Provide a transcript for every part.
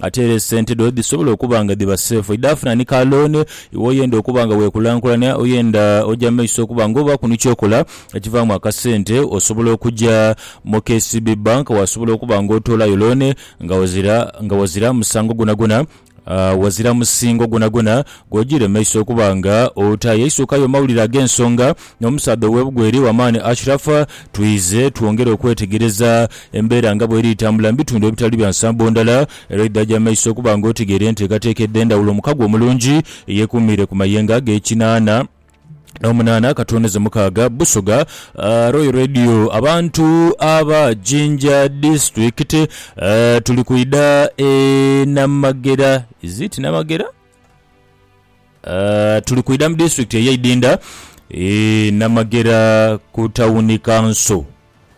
Ate era esente dho dhisobola okuba nga dhiba seefu. Idhafuna ni ka looni. Iwe oyenda okuba nga weekulankulania, oyenda oja mu maiso okuba nga obaaku ni ky'okola ekivaamu akasente, osobola okuja mu KCB Bank waasobola okuba nga otoolayo looni nga wazira nga wazira musango gwonagwona, wazira musingo gwonagwona gw'ojiire mu maiso okuba nga otayo. Eisuuka y'omawulire ag'ensonga. n'omusaadha ow'ebugwere Wamani Ashraf twize twongera okwetegereza embeera nga bw'eri tambula mu bitundu ebitali bya nsambo ndala era oidhaje amaiso okuba nga otegeera enteekateeka edh'endhawulo omukago omulungi eyeekuumiire ku mayengo ag'ekinaana n'omunaana katooneze mukaaga Busoga Royal Radio Abantu aba Jinja Disitulikiti tuli kwidha e Namagera Is it Namagera? Tuli kwidha mu disitulikiti ey'e Idinda e Namagera ku tawuni kanso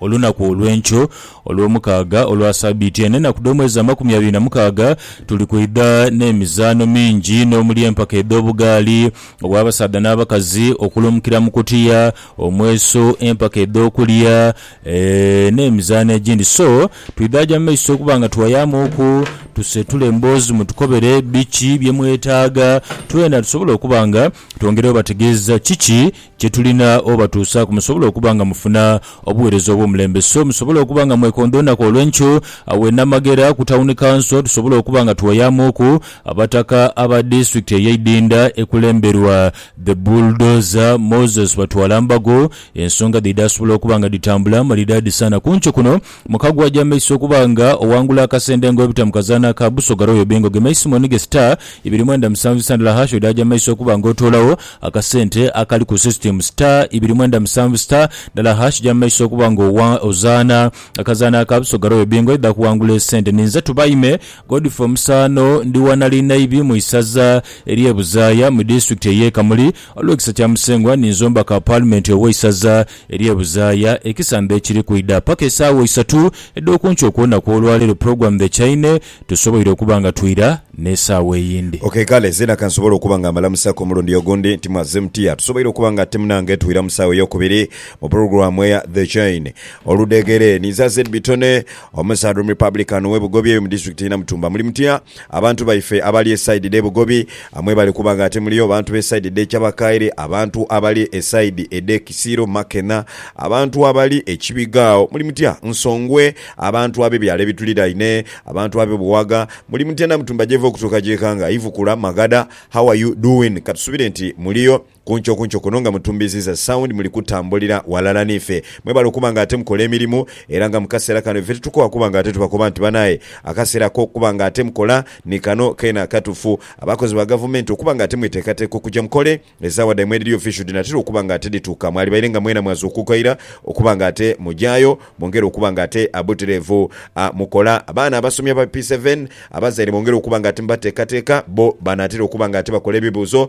olunaku olw'enkyo Olwomukaaga olwa sabiiti eno. Enaku dh'omwezi amakumi abiri na mukaaga tuli kwidha n'emizaano mingi inho omuli empaka edh'obugaali obw'abasaadha n'abakazi, okulumukira mu kutiya omweso, empaka edh'okulya eeh, n'emizaano egindi. So, twidhaaja mu maiso okuba nga tuwayamuuku, tusetule emboozi mutukobere biki bye mwetaaga, twena tusobole okuba nga twongera obategeeza kiki kye tulina obatuusaaku musobole okuba nga mufuna obuweereza obw'omulembe. So, musobole okuba nga mwekondoonhaku olw'enkyo awe Namagera ku Tawuni Kanso tusobole okuba nga tuwayamuuku Abataka aba Disitulikiti ey'Eidhindha ekulemberwa The Bulldozer Moses Batwalambago, Ensonga dhe idaasobola okuba nga dhitambula male dhaadhisaana kuncho kuno, muka gwo aja maiso okuba nga owangula akasenda engo ebita mu kazaano aka Busoga Royal Bingo ge maiso mu nige star ibiri mwenda musanvu isa ndala hash odhaaja maiso okuba nga otoolagho akasente akali ku system star ibiri mwenda musanvu star ndala hash ja maiso okuba nga ozaana akazaano aka Busoga Royal Bingo idha kuwangula esente ninze Tubaime Godfrey Omusaano ndi wa Nalinaibi mu isaza erye Buzaaya mu district eye Kamuli Olw'ekisa kya Musengwa ninzomba ka Paalimenti ow'eisaza ery'e Buzaaya ekisamba ekiri kwidha. Paka esaawa isatu edh'okunkyo okwona kw'olwaleero pulogulaamu dhekyaine, tusoboire okuba nga twira n'esaawa eyindi. Ok kale, zeena ka nsobole okuba nga mbalamusaku omulundi ogundi nti mwazze mutya. Tusoboire okuba nga ate munange twira mu saawa ey'okubiri mu pulogulaamu eya The Chain. Oludheeghere, ninze Azed Bitone, omusaadha Omurepublican ow'e Bugobi eyo mu Disitulikiti y'e Namutumba. Muli mutya? Abantu baife abali esaidi dhe Bugobi amwebale kuba nga ate muliyo bantu be saidi dhe Kyabakaire, abantu abali esaidi edhe Kisiiro, Makena, abantu abali e Kibiga agho muli mutya? Nsongwe, abantu abe byalo ebituliraine, abantu abe Buwaga muli mutya? Namutumba gyeva okutuuka gyekanga, Ivukula, Magada, how are you doing? Katusubire nti muliyo. Kunkyo kunkyo kuno nga mutumbiziza sound muli kutambulira walala nife. Mwebale okuba nga ate mukola emirimu era nga mukasera kano ife titukoowa kuba nga ate tubakoba nti banaye akasera akokuba nga ate mukola ni kano kena katufu. Abakozi ba gavumenti okuba nga ate mwetekateka okuja mukole ezawa dhaimwe edhiri official dhinatera okuba nga ate dhituuka mwalibaire nga mwena mwazuukuka ira okuba nga ate mujayo mwongere okuba nga ate abuterevu mukola. Abaana abasomi aba P seven abazaire bongere okuba nga ate mubatekateka bo banatera okuba nga ate bakola ebibuuzo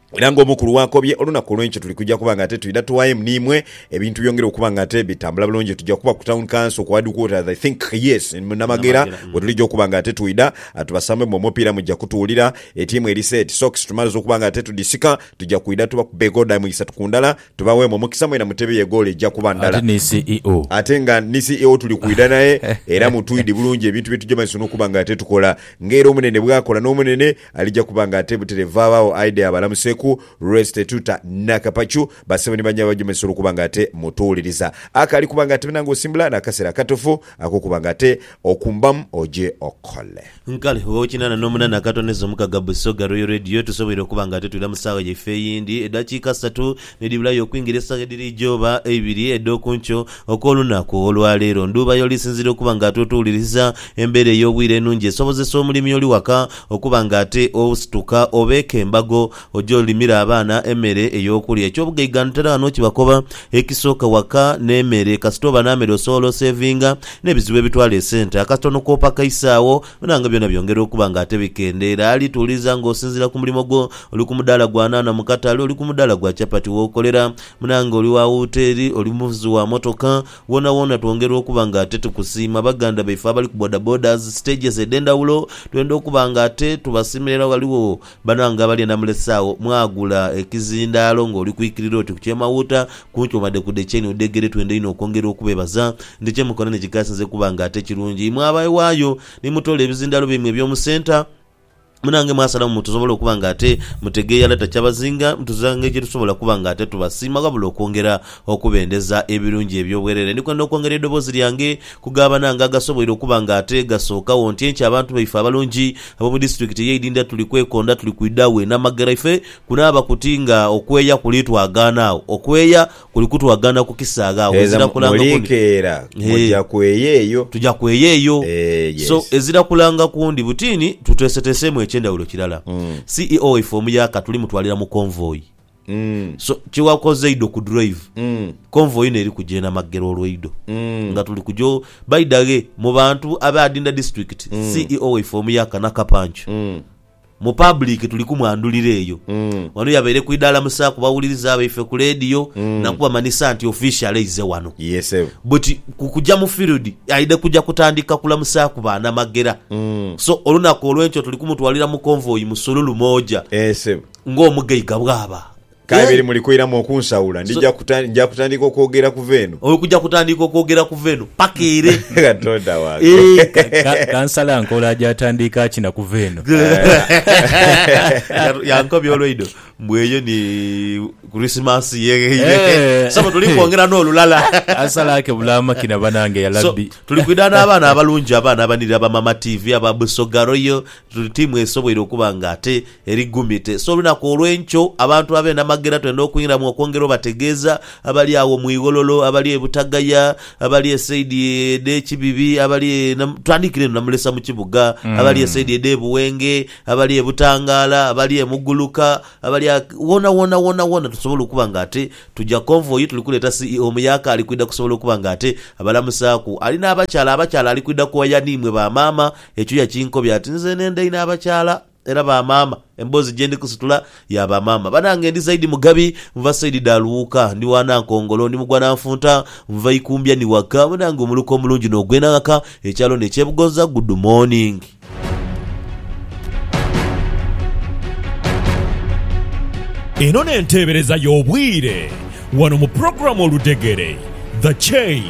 Era nga omukulu wakobye, olunaku olwenkyo tuli kuja kuba nga ate twidha tuaem nimwe, ebintu byongere okuba nga ate bitambula bulungi. Tuja kuba ku town council ku headquarters I think, yes, mu Namagera wetulija okuba nga ate twidha tubasambemu omupiira muja kutuwulira. Etiimu eri set, socks tumaliza okuba nga ate tudhisika, tuja kwidha tubakube egodamu isatu ku ndala tubaweemu omukisa mwena mutebe ye goolo eja kuba ndala. Ate nga ni CEO tuli kwidha naye era mutwidi bulungi ebintu byetuja maiso nokuba nga ate tukola. Nga era omunene bwakola nomunene, Alija kuba nga atebutere vaagho agho aidhe abalamuseku. Resty Tuta na Kapachu basebo ni banyaabwe abajomesa olw'okuba nga ate mutuwuliriza. Ako ali kuba nga atemena nga osimbula n'akaseera akatufu ak'okuba nga ate okumbamu oje okole. Kale oba okinana n'omunana akatoneza omukaga Busoga Royal Radio tusoboire okuba nga ate twira mu saawa yaife eyindi edakiika satu. Ni dhibulayo okwingira esaawa edhiri eighooba eibiri edh'oku nkyo okw'olunaku olwa leero. Ndhuuba y'oli sinziira okuba nga ate otuwuliriza? Embeera ey'obwire enungi esobozesa omulimi oli waka okuba nga ate osituka obeeka embago oje olimire abaana emere ey'okulya. Eky'obugaiga ntera ghano kibakoba ekisooka waka n'emere. Kasita oba n'amere osobola osevinga n'ebizibu ebitwala esente akatono kw'opaka isaagho Bona nga byona byongera okuba nga ate bikendeera. Ali tuuliza nga osinziira ku mulimo gwo. Oli ku mudaala gwa nhanha mu katale, oli ku mudaala gwa chapati w'okolera, munange oli wa wuteeri, oli muvuzi wa motoka, woonawoona twongera okuba nga ate tukusiima. Baganda baife abali ku bodabodas, stages edh'endhawulo, twenda okuba nga ate tubasiimira era ghaligho Bano nga bali anamulese agho mwagula ekizindaalo nga oli kwikirira oti ku kyemawuuta kunkyo wadde ku dde kyeni udegere twenda inho okwongera okubebaza nti kyemukola nikikasinze kuba nga ate kirungi imwe abaewaayo nimutoola ebizindaalo byaimwe ebyomu centre munange mwasalamu mutusobola okuba nga ate mutegeya ala takyabazinga mutuzira engeri gyetusobola okuba nga ate tubasiima wabula okwongera okubendeza ebirungi ebyobwerere ndikwenda okwongera eidoboozi lyange ku ga banange agasoboire okuba nga ate gasookagho nti enkya abantu baife abalungi Abomu disiturikiti eye Idinda tuli kwekonda tuli kwidha we namagera ife kunaaba kuti nga okweeya kuli twagaana agho okweeya kuli kutwagaana ku kisaaghe agho Gheza ezira kulanga kundi mulikeera Eeh. muja kweeya eyo. Tuja kweeya eyo. Eeh So yes. ezira kulanga kundi butiini tuteeseteeseemu ekyendhawulo kirala. Ceo waife omuyaaka tuli mutwalira mu convoy. So kyewakoze idho ku drive convoy ino eri kuja enamaggera olweidho nga tuli kuja o baidhaghe mu bantu abe adinda district ceo waife omuyaka nakapancu mu public tuli kumwandhulira eyo wano yabaire ku idaala musa ku bawuliriza abaife ku leediyo nakubamanhisa nti official aize wano Yes sebo. but ku kuja mu field aidha kuja kutandika kulamusaaku banamaggera so olunaku olwenkyo tuli kumutwalira mu convoy musululu moja Eh sebo. ng'omugaiga bw'aba. K'abe eri muli kwiramu okunsaula, ndija kuta, nja kutandiika okwogera kuva eno. Oli kuja kutandiika okwogera kuva eno paka ere. Katonda wange! Ka, kansala nkola aja atandiika akina kuva eno. Yatu, yankobya olweido mbu eyo ni Kurisimansi yegheire. Eeh. Ssebo, tuli kwongera n'olulala. Kansala akebula amakina banange, ya So, Labbi. tuli kwidha n'abaana abalungi, abaana abanirira ba Mama TV, aba Busoga Royal, tuli tiimu esoboire okuba nga ate Eri gumite. So olunaku olw'enkyo, abantu ab'enamagera twenda okwingiramu okwongera obategeeza, abali agho mu ighololo, abali e Butagaya, abali e saidi edh'e Kibibi, abali e Nam, twandiikire eno Namulesa mu kibuga, abali e saidi edh'e Buwenge, abali e Butangaala, abali e Muguluka, abali a, woonawoona, woonawoona tusobola okuba nga ate tuja konvoyi tuli kuleeta CEO Muyaka ali kwidha kusobola okuba nga ate abalamusaaku. Ali n'abakyala, abakyala ali kwidha kuwaya niimwe ba maama. Ekyo yakinkobya ati, Nze nenda inho abakyala. Era ba maama emboozi gyendi kusitula ya ba maama banange ndi zaidi mugabi nva saidi dha luwuuka ndi wa nankongolo ndi mugwa nanfunta nva ikumbya ni waka banange omuluka omulungi no gwena ghaka ekyalo ne kyebugonza good morning. Eno n'enteebereza y'obwire. Wano mu pulogulaamu Oludhegere, The Chain.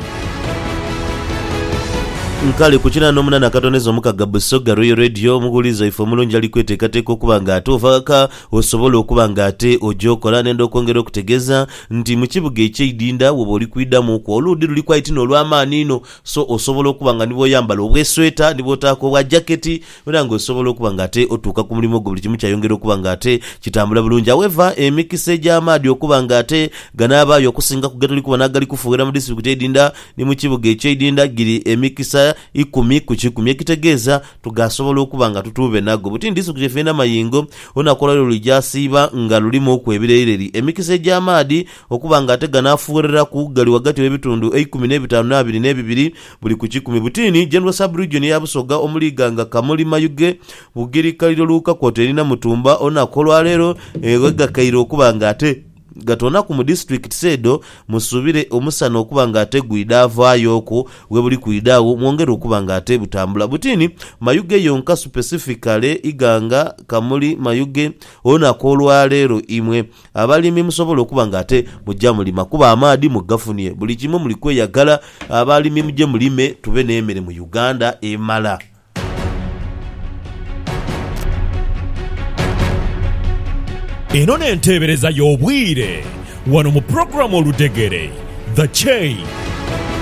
Nkali ku kinaana omunana akatoneza omukaga Busoga Royal Radio omughulizi waife omulungi ali kweteekateeka okuba nga ate ova ghaka osobola okuba nga ate oja okola. Nenda okwongera okutegeeza nti mu kibuga ekye Idinda woba oli kwidhamu ku, oluudhi luliku aye ti n'olwamaani inho so osobola okuba nga ni bwoyambala obwesweta ni bwotaaku obwa jaketi, era nga osobola okuba nga ate otuuka ku mulimo gwo buli kimu kyayongera okuba nga ate kitambula bulungi. However, emikisa egy'amaadhi okuba nga ate ganaabaayo okusinga ku getuli kubona agali kufuughera mu disitulikiti edhindha ni mu kibuga eky'edhindha giri emikisa ikumi ku kikumi ekitegeeza tugaasobola okuba nga tutuube nago buti ni disitulikiti yaffe y'e Namayingo olunaku olwaleero lwegyasiiba nga lulimuuku ebireyireri. Emikisa egy'amaadhi okuba nga ate ganaafuugheraku gali ghagati w'ebitundu eikumi n'ebitaanu n'abiri n'ebibiri Buli ku kikumi butini General Sub Region ya Busoga omuli Iganga, Kamuli, Mayuge, Bugiri, Kaliro, Luuka kwoota eri Namutumba olunaku olwaleero ghegakaire okuba nga ate gatoonaku mu disitulikitisi edho musuubire omusana okuba nga ate gwidha avaayoku webuli kwidha agho mwongere okuba nga ate butambula butini Mayuge yonka supesifikale Iganga, Kamuli, Mayuge olunaku olwaleero imwe. Abalimi musobola okuba nga ate muja mulima kuba amaadhi mugafunie buli kimu muli kweyagala abalimi muje mulime tube nemere mu Uganda emala. Eno n'enteebereza y'obwire wano mu pulogulaamu Oludhegere, The Chain.